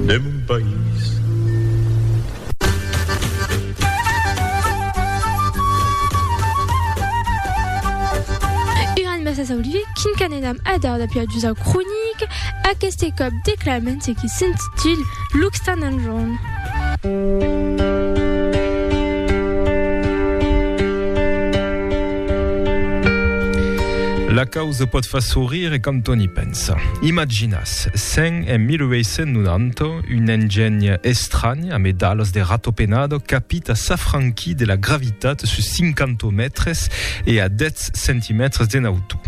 de mon país. Uran massa saulue quin qu'anenam a dar dapia d'usa cronic, aqueste còp declamen ce qui s'intitule L'occitan en jorn. La causa pòt far sourire e quand on i pens. Sa. Imaginatz, sèn en 1890, un engènh estranh, amé d'alas de rato penado, capit a s'afranquir de la gravitat sus 50 mètres e a 10 centimètres d'en autor.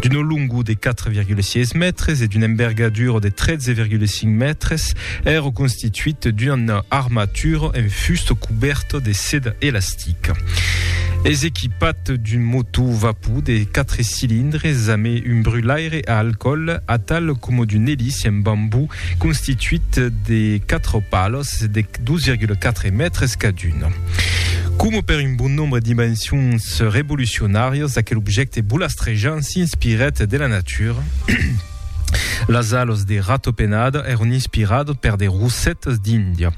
D'una longor de 4,6 mètres e d'una envergadura de 13,5 mètres, èra constituit d'una armatura en fusta cubèrta de seda elastica. Atlantic. Es equipat d'un motò vapor de 4 cilindres amé un brulaire a alcòl atal coma d'un eliç en bambú constituit de 4 palos de 2,4 mètres cadun. Coma per un bon nombre d'invencions revolucionàrias, aquel objècte bolastrejant s'inspirèt de la natura, Las alos de ratopenada èron inspiradas per de rosetas d'Índia.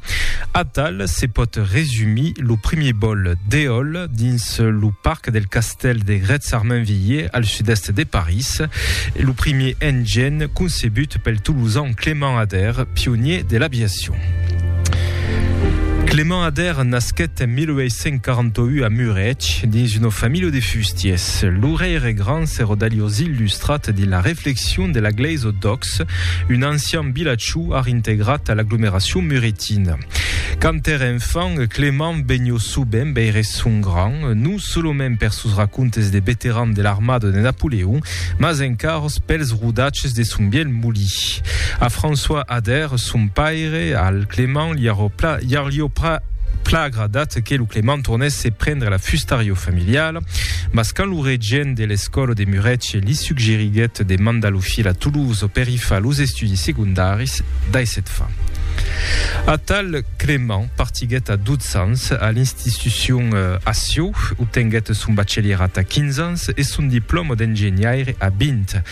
Atal se pòt resumir lo primièr bòl d'eòl dins lo parc del castèl de Grètz-Armainvilliers al sud-èst de París, lo primièr engen concebut pel Tolosan Clément Ader, pionier de l'aviacion. Clément Ader nasquèt en 1841 a Mureig dins una familha de fustiers. Se lo reire grand se rodaglios illustrat dins la reflexion de la glèisa o d'Ox, un ancian vilatjò ar integrat a l'aglomeracion muretina. Quand ère enfant, Clément vegnió sovent veire son grand, non solament per sos racontes de veteran de l'armada de Napoleon, mas encaros pels rodatges de son vièlh molí. A François Ader, son paire, al Clément li arrò pla, li arlió pra, pla agradat que lo Clément tornèsse prendre la fustarió familiala. Mas quand lo regent de l'escòla de Mureche li suggeriguèt de mandar lo filh a Toulouse per i far los estudis segondaris, daissèt fa. Atal Clément partiguèt a 12 ans a l'institucion a Sieu, obtenguèt son bachelièrat a 15 ans e son diplòma d'engenhaire a 20.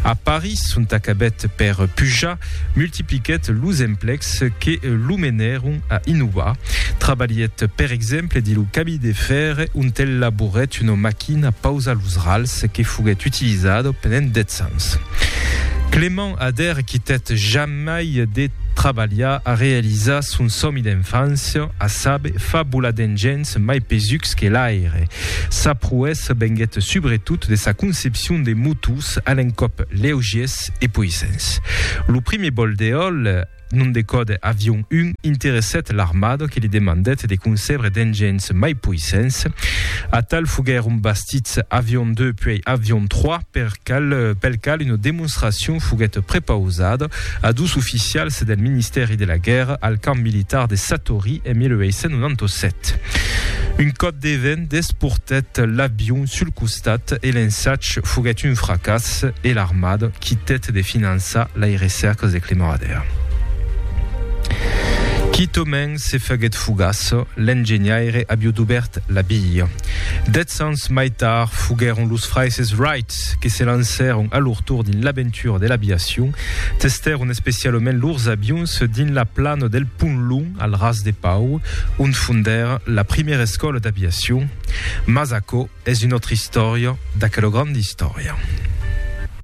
A Paris, ont acabèt per pujar, multipliquèt los emplecs que lo menèron a innovar. Trabalhèt per exemple dins lo camí de fèr, ont el laborèt una maquina pausa los rals que foguèt utilizada pendent dètz ans. Clément Ader quitèt jamai de trabalhar a realizar son sòmi d'enfància, a saber, far volar d'engenhs mai pesucs que l'aire. Sa proèssa venguèt subretot de sa concepcion l'opcion de motos a l'encòp leugiers e poissents. Lo primier bòl d'eòl, nom de còde Avion 1, interessèt l'armada que li demandèt de concebre d'engins mai poissents. Atal foguèron bastits Avion 2 puèi Avion 3, per cal, pel cal una demonstracion foguèt prepausada a dos oficials del Ministèri de la Guèrra al camp militar de Satory en 1897. Un còp de vent, Desportèt l'avion sul costat e l'ensatge foguèt un fracàs e l'armada quitèt de finançar lai recèrcas de Clemoradea. Quitament se faguèt fugaç, l'engenhaire avió dubèrt la via. Dètz ans mai tard foguèron los fraisses Wright que se lancèron a lor tor dins l'aventura de l'aviacion. Testèron especialament lors avions dins la plana del Pont Long, al Ras de Pau, ont fondèr la primièra escòla d'aviacion, mas aquò es una autra istòria d'aquela granda istòria.